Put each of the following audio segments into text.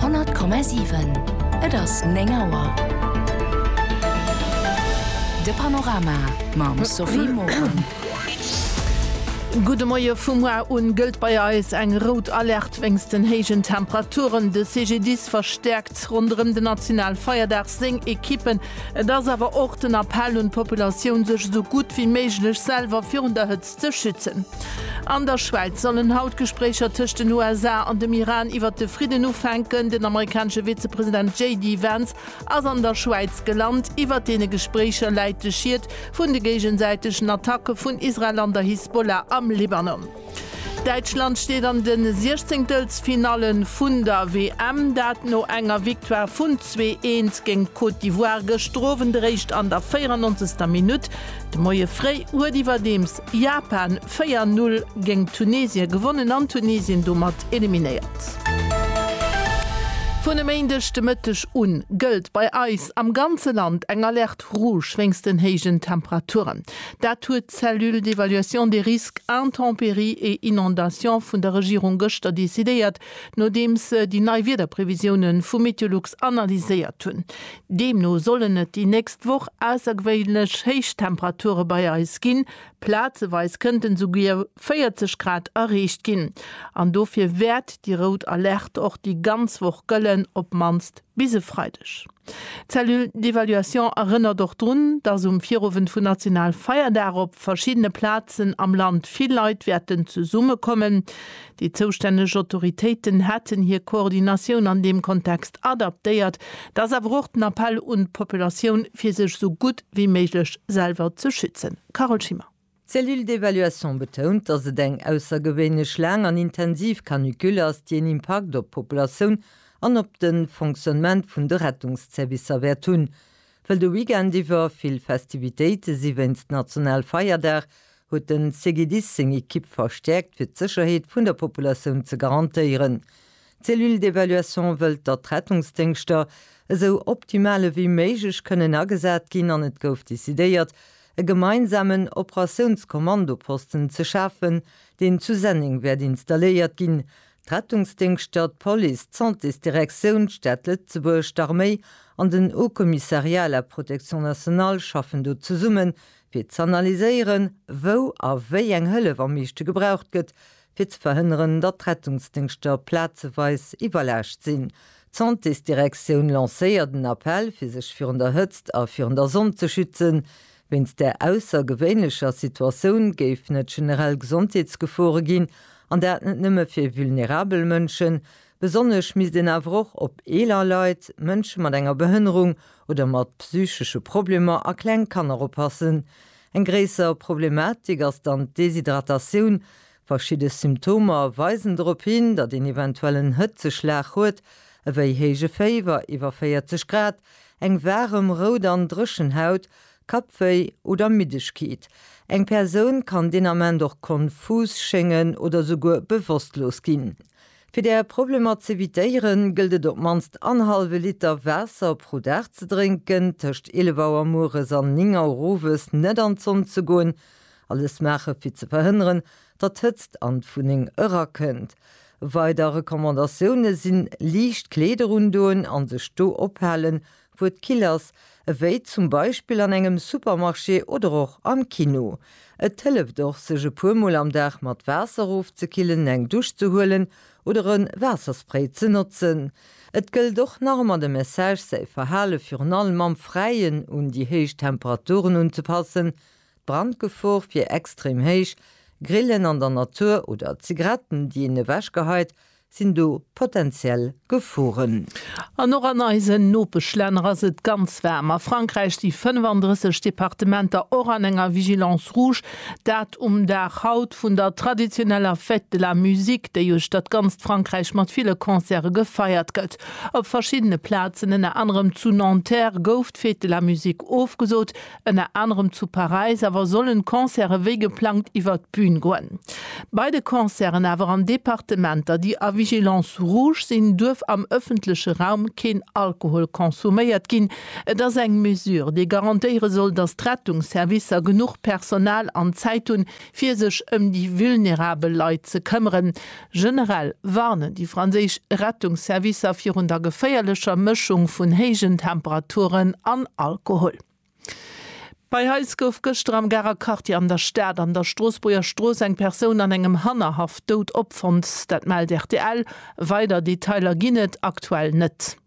100,7. Et ass 9 Auer. De Panorama mam Sophie Morang. Gudde Moie. Vu muar un gëllt bei eis eng rout Alerte wéinst den héijen Temperaturen. De CGDIS verstäerkt ronderëm den national Feierdag seng Ekippen. Et ass awer och den Appell un d'Populatioun sech esou gutt wéi méiglech selwer virun der Hëtzt ze schützen. An der Schwäiz sollen haut d'Gespréicher tëscht den USA an dem Iran iwwert de Fridden ufänken. Den amerikanesche Vizepresident JD Vance ass an der Schwäiz gelant. Iwwert deene Gespréicher läit de Schied vun de géigesäitegen Attacke vun Israel an der Hisbollah am Libanon. Däitschland steet an de Siechzenktelfinalle vun der WM, dat no enger Victoire vun zwee Eent géint d'Côte d'Ivoire gëschter Owend, eréischt an der 94. Minutt De Moie fréi huet iwwerdeems Japan 4 Null géngt Tunesien gewonnen an Tunesien domat eliminéiert. Vun e Méindeg de Mëtteg u gëllt bei eis am ganze Land eng Alerte Rouge wéinst den héijen Temperaturen. Dat huet d'Cellule d'évaluation des risques intempéries et inondations vun der Regierung gëschter decidéiert, nodeems se déi nei Wiederprevisioune vu Meteolux analyséiert hunn. Deemno sollen et déi nächst Woch aussergewéinlech héich Temperature bei eis ginn, plazeweis kënnten souguer 40 Grad erreecht ginn. An dofir wäert déi rout Alerte och déi ganz Woch gëllen, op mannst bis e Freideg. D'Cellule d'évaluation erënnert och drun, dass um Virowend vun Nationalfeierdag op verschiddene Plazen am Land vill Leit wäerten zesummekommen. Déi zoustänneg Autoritéiten hätten hir Koordinatioun an deem Kontext adaptéiert. Dat ass awer och den Appell un d'Populatioun, fir sech esou gutt wéi méiglech selwer ze schützen. Carole Schimmer. D'Cellule d'évaluation betount, datt et eng aussergewéinlech laang an intensiv Canicule ass, déi en Impakt op d'Populatioun an op de Fonctionnement vun de Rettungsservicer wäert hunn. Well de Weekend iwwer vill Festivitéite si wéinst Nationalfeierdag, huet de CGDIS seng Ekipp verstäerkt, fir d'Sécherheet vun der Populatioun ze garantéieren. D'Cellule d'Evaluation wëllt, datt d'Rettungsdéngschter esou optimal ewéi méiglech kënnen agesat ginn an et gouf decidéiert, e gemeinsamen Operatiounskommandoposten ze schafen, deen zu Senneng wäert installéiert ginn, D'Rettungsdéngschter, d'Police, d'Santésdirektioun, d'Stad Lëtzebuerg, d'Arméi an den Haut Commissariat à la Protection Nationale schaffen do zesumme fir z'analyséieren, wou a wéi eng Hëllef am meeschte gebraucht gëtt, fir ze verhënneren, datt d'Rettungsdéngschter plazeweis iwwerlaascht sinn. D'Santésdirektioun lancéiert en Appell, fir sech virun der Hëtzt a virun der Sonn ze schützen. Wéinst där aussergewéinlecher Situatioun géif net generell Gesondheetsgefore ginn, an dat net nëmme fir vulnerabel Mënschen. Besonnesch misst een awer och op eeler Leit, Mënsche mat enger Behënnerung oder mat psychesche Problemer a kleng Kanner oppassen. Eng gréisser Problematik ass dann d'Deshydratatioun, Verschidde Symptomer weisen drop hin, datt een eventuell en Hëtzeschlag huet, ewéi héije Féiwer iwwer 40 Grad, eng waarem, rout an dréchen Haut, Kappwéi oder Middegkeet. Eng Persoun kann deen Ament och konfus schéngen oder souguer bewosstlos ginn. Fir där Problemer z'evitéiere gëllt et op d'mannst anhallwe Liter Waasser pro Dag ze drénken, tëscht 11 Auer mueres an 9 Auer owes net an d'Sonn ze goen Alles maache fir ze verhënneren, datt d'Hëtzt an d'Wunneng erakënnt. Weider Recommandatioune sinn, liicht Kleeder undoen an sech do ophalen, wou et kill ass, ewéi zum Beispill an engem Supermarché oder och am Kino. Et hëlleft och, sech e puer Mol am Dag mat Waasser ofzekillen, eng Dusch ze huelen oder e Waasserspray ze notzen. Et gëllt och nach ëmmer de Message, säi Verhale virun allem am Fräien un déi héich Temperaturen unzepassen, D'Brandgefor wier extrem héich, Grillen an der Natur oder Zigaretten, déi een ewech geheit, sinn do potenziell Geforen. An och an eisen Nopeschlänner ass et ganz waarm. A Frankräich si 35 Departementer och an enger Vigilance rouge. Dat um Dag haut vun der traditioneller Fête de la musique, déi uecht dat ganzt Frankräich mat ville Concerte gefeiert gëtt. Op verschiddene Plazen, ënner anerem zu Nanterre, gouf d'Fête de la musique ofgesot, Ënner anerem zu Paräis awer sollen d'Concerte wéi geplangt iwwert d'Bün goen. Bei de Concerten awer an Departementer, déi a Vigilance rouge sinn, duerf am ëffentleche Raum keen Alkohol konsuméiert ginn. Et ass eng Mesure, déi garantéiere soll, datt d'Rettungsservicer genuch Personal an Zäit hunn, fir sech ëm déi vulnerabel Leit ze këmmeren. Generell warnen déi franséisch Rettungsservicer virun der geféierlecher Mëschung vun héijen Temperaturen an Alkohol. Bei eis gouf gëschter am Garer Quartier an der Stad an der Stroossbuerger Strooss eng Persoun an engem Hannerhaff dout opfonnt. Dat mellt rtl. Weider Detailer ginn et aktuell net.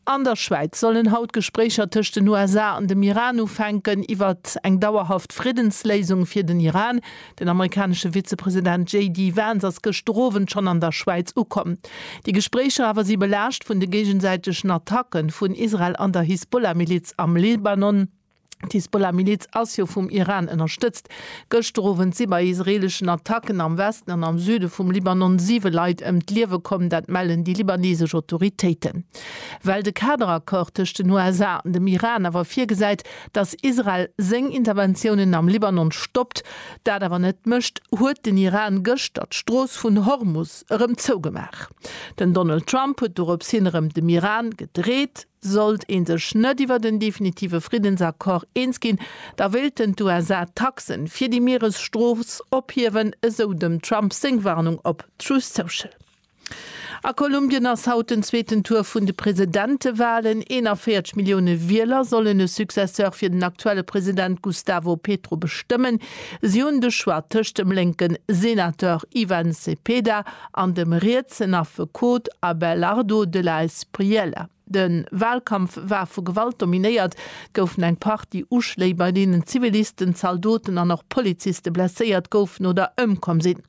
An der Schwäiz sollen haut d'Gespréicher tëscht den USA an dem Iran ufänken, iwwert eng dauerhaft Friddensléisung fir den Iran. Den amerikanesche Vizepresident JD Vance ass gëschter Owend schonn an der Schwäiz ukomm. Déi Gespréicher awer si belaascht vun de géigesäitegen Attacke vun Israel an der Hisbollah-Miliz am Libanon. D'Hisbollah Miliz ass jo vum Iran ënnerstëtzt. Gëschter Owend si bei israeleschen Attacken am Westen an am Süde vum Libanon 7 Leit ëm d'Liewe komm, dat mellen déi libanesesch Autoritéiten. Well de Kaderaccord tëscht den USA an dem Iran awer virgesäit, datt Israel seng Interventiounen am Libanon stoppt, dat awer net mécht, huet den Iran gëschter d'Strooss vun Hormus erëm zougemaach. Den Donald Trump huet doropshin erëm dem Iran gedreet, Sollt ee sech net iwwert en definitive Friddensaccord eens ginn, da wéilten d'USA d'Taxen fir déi Mieresstrooss ophiewen, esou dem Trump seng Warnung op Truth Social. A Kolumbien ass haut den zweeten Tour vun de Presidentewalen. 41 Millioune Wieler sollen e Successeur fir den aktuelle President Gustavo Petro bestëmmen. Si hunn de Choix tëscht dem lénken Senateur Ivan Cepeda an dem rietsen Affekot Abelardo de la Espriella. De Walkampf war vu Gewalt dominéiert, goufen eng Partie Uschléi, bei deenen Zivilisten, Zaldoten an och Poliziste blesséiert goufen oder ëmkomm sinn.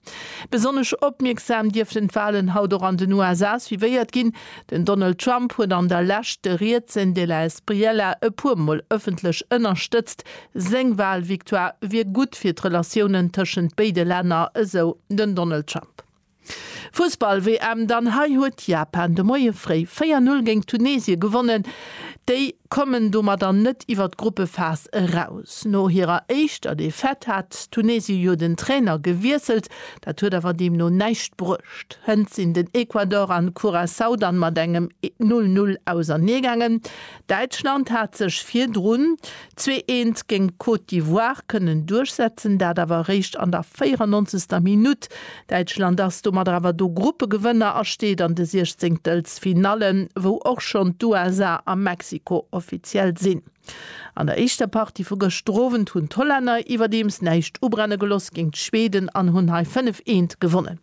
Besonnesch opmierksam dierften d'Walen haut och an den USA suivéiert ginn. Den Donald Trump huet an der Lescht de rietsen de la Espriella e puer Mol ëffentlech ënnerstëtzt, Seng Wahlvictoire wier gutt fir d'Relatiounen tëschent béide Länner, esou den Donald Trump. Fussball-WM, Dann hei huet Japan de Moie fréi 4, 0 géint Tunesien gewonnen. Déi kommen domadder net iwwer d'Gruppephas eraus. No hirer éischter Defaite hat Tunesien jo den Trainer gewiesselt. Dat huet awer deemno näischt bruecht. Hënt sinn den Ecuador an Curaçao dann mat engem 0, 0 auserneegaangen. Däitschland hat sech virdrun Zwee Eent géint d'Côte d'Ivoire kënnen duerchsetzen, dat awer eréischt an der 94. Minutt. Däitschland ass domadder awer do Gruppegewënner a steet an de Siechzéngtels Finalle, wou och schonn d'USA a Mexiko offiziell sinn. An der éischter Partie vu gëschter Owend hunn d'Hollänner iwwerdeems näischt ubrenne geloss géint d'Schweden an hunn hei 5, Eent gewonnen.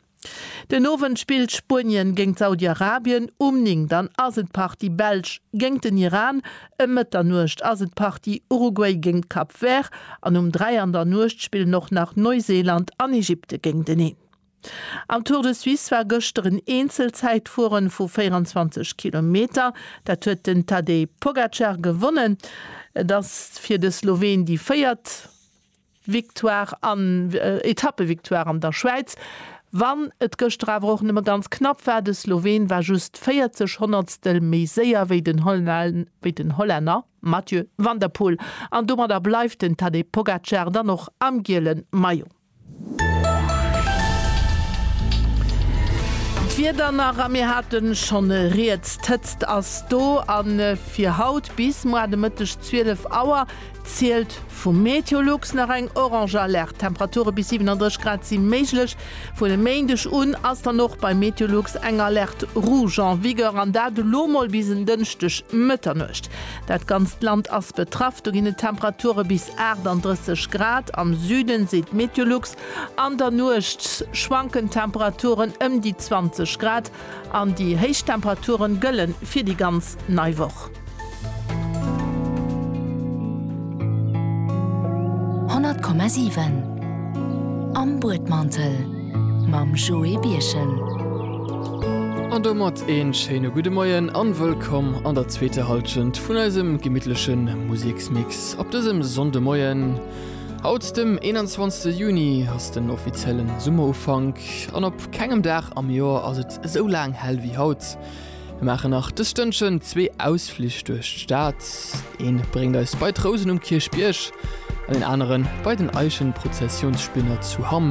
Den Owend spillt Spuenien géingt Saudi-Arabien, um 9 dann ass et Partie Belsch géingt den Iran, ëm Mëtternuecht ass et Partie Uruguay géingt Cap Vert an um 3 an der Nuecht spillen och nach Neuseeland an Egypte géinteneen. Am Tour de Suisse war gëschter en Eenzelzäitfueren vu 24 Kilometer, dat huet den Tadej Pogacar gewonnen. Et ass fir de Sloween déi véiert. Victoire an Etappevictoire an der Schwäiz, wann et gëschter awer och nëmme ganz knapp war. De Sloween war just 40 Honnertstel méi séier wéi den Hollänner Mathieu van der Poel an domadder bleift den Tadej Pogacar dann och am giele Maillot. D'Wieder nach, a mir hate schonn e riets, d'Hëtzt ass do a fir haut bis moar de Mëtteg 12 Auer Zielt vu Meteolux nach eng orange Alerte. Temperature bis 37 Grad si méiglech. Vun e Méindeg un ass dann och bei Meteolux eng Alerte rouge en vigueur, an dat elo mol bis en Dënschdeg Mëtternuecht. Dat ganzt Land ass betraff, do ginn et Temperature bis 38 Grad am Süden, seet d'Meteolux. An der Nuecht schwanken d'Temperaturen ëm déi 20 Grad. An déi héich Temperature gëlle fir déi ganz nei Woch. Honnert Komma siwen Am Buedmantel mam Joé Birchen. An domat een schéine gudde Moien an wëllkomm an der zweeter Halschent vun eisem gemittlechen Museksmix op dësem Sonndemoien. Haut dem 21 Juni ass den offiziellen Summerufank an op. Kengem Dag am Joer ass et esou laang hell wéi haut. Mir maachen nach dës Stënnchen zwee Ausflich duerch d'Stad. Een bréngt eis bei d'Rousen um Kierchbierg an deen aneren bei den Eichenprozessionsspinner zu Hamm.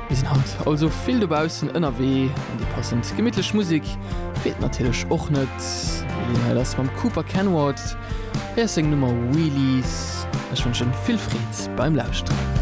Mir sinn haut also vill dobaussen ënnerwee an déi passend gemittlech Musik feelt natierlech och net. D'Milly Heil ass mam Cooper Kenward. Hei ass seng Nummer Wheelies. Ech wënschen vill Freed beim Lauschteren.